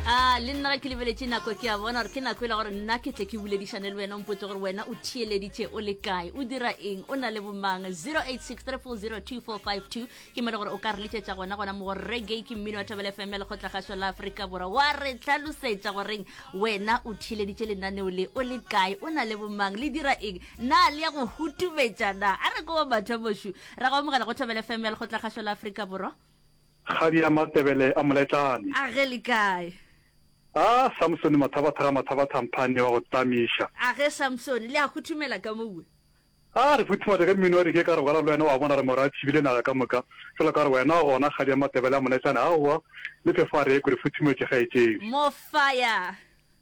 a le nna ge ke lebeletše nako ke a bona gore ke nako e le gore nna ke tle ke boledišane le wena mpotse gore wena o theeleditše o le kae o dira eng o na le bomang 0863402452 ke mele gore o ka re letšetša gona gona mo reggae ke mmino wa thabele fm ya lekgotla gašo la aforika borwa wa re tlhalosetša goreng wena o theeleditše lenaneo le o le kae o na le bomang le dira eng na le ya go hutumetša na a re ko ba batho bošu ra go amogela go thabele fm ya lekgotla gašo la aforika borwa Kgadi ya Matebele a Moletlane. A ge le kae? A Samsoni Mathabathaga Mathabathamphane wa go tlamiša. A ge Samsoni, le a huthumela ka mowe? A re futhumatše ka mmino wa dike ka re bogala le wena wa bona re morwa a tšhibile naga ka moka fela ka re wena gona Kgadi ya Matebele a Moletlane aowa le phefo a re ekwe re futhumetše kgaetšedi. Mofaya!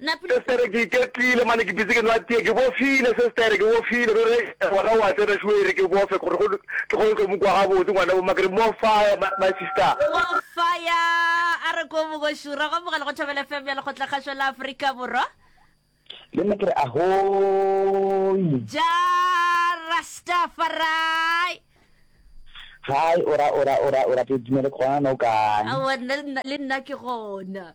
Sestere, Ke iketlile mane ke dutse ke nwa tee. Ke bofile sestere, ke bofile. Ruri, Eya gona wa tsena šo e re ke bofe gore go tle go tlo mo kwa gabotse ngwana bo mma. Ke re, More fire my sister. More fire a re ko boko šura. Go amogela go Thobela FM ya Lekgotlakgašo la Afrika Borwa. Le nna ke re ahoi. Jah Rastafari. Hi ora ora ora ora ke dumele gona no kae. Aowa nna le nna ke gona.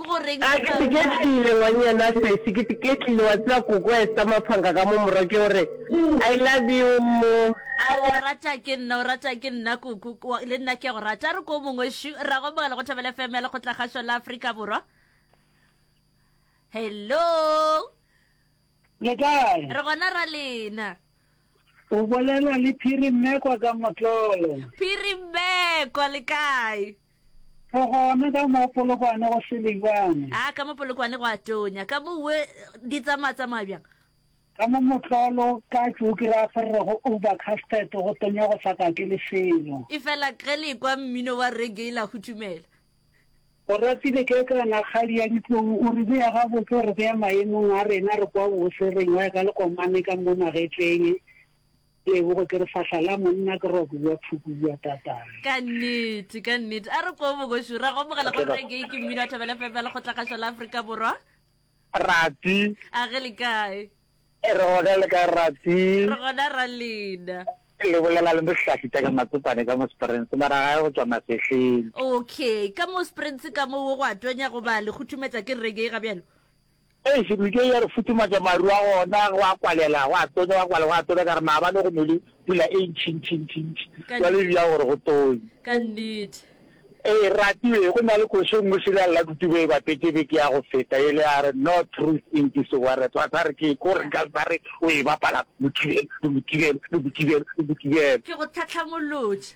Ke go reng A ke se ke tlile ngwanyana sesi ke ke tlile wa tseba koko Esther Maphanka ka mo morwa ke gore I love you mo. A re o rata ke nna o rata ke nna koko kwa le nna ke a go rata a re ko mongwe shu ra go mogala go Thobela FM ya lekgotla kgašo la Afrika Borwa Hello Le kae? Re gona ra lena O bolela le Phiri Mmekwa ka Motlolo. Phiri Mmekwa le kae? Go gona ka mo Polokwane go Selibane. A ka mo Polokwane go a tonya. Ka mo we di tsamaya tsamaya bjang? Ka mo Motlolo ka tšoki ra ferre go Uber Castet go tonya go sa kake le selo. E fela ge le kwa mmino wa reggae la hutumela. Oratile Kekana kgadi ya ditlou o re bea gabotse o re bea maemong a rena re kwa bose re nywaya ka lekomane ka mo magetleng. Tebogo, Ke re fahla la monna ke ra kua phukua tatane. Ka nnete, ka nnete. A re kwee bogoši, re a go amogela go Reggae ke Mmino wa Thobela FM ya Lekgotlakgašwa la Afrika Borwa. Rati. A ge le kae? Re gona le kae Rati? Re gona ra lena. Le bolela le Bohlafi Teka Matsopane ka mo Springs mara gae go tšwa Masehleng. Okay, ka mo Springs ka mo wo go a tonya goba le kgothumetsa ke Reggae ga bjalo? Eish Luke ya re futhumatša maru a gona go a kwalela go a tonya go a kwalela go a tonya ka re maabane go nole pula e ntšhintšhintšhintši jwale e bjang gore go tonye. Ka nnete. Ee Ratiwe go na le koši e nngwe serial la Dutube e bapetše beke ya go feta yele ya re No Truth in This Warrior Tshwantse a re ke ko re ka ba re o e bapala Mokibelo le Mokibelo le Mokibelo le Mokibelo. Ke go tlhatlhamolotše.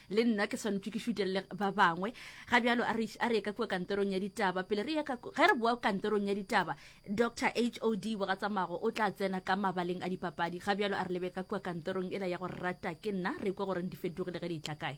le nna ke swanetše ke šutelele ba bangwe ga bjalo a re ye ka kua kantorong ya ditaba pele re ge re boa kantorong ya ditaba dr h o d bogatsamago o tla tsena ka mabaleng a dipapadi ga bjalo a re lebe ka kua kantorong e la ya go rata ke nna re kwa goreng di fetogile ge di tla kae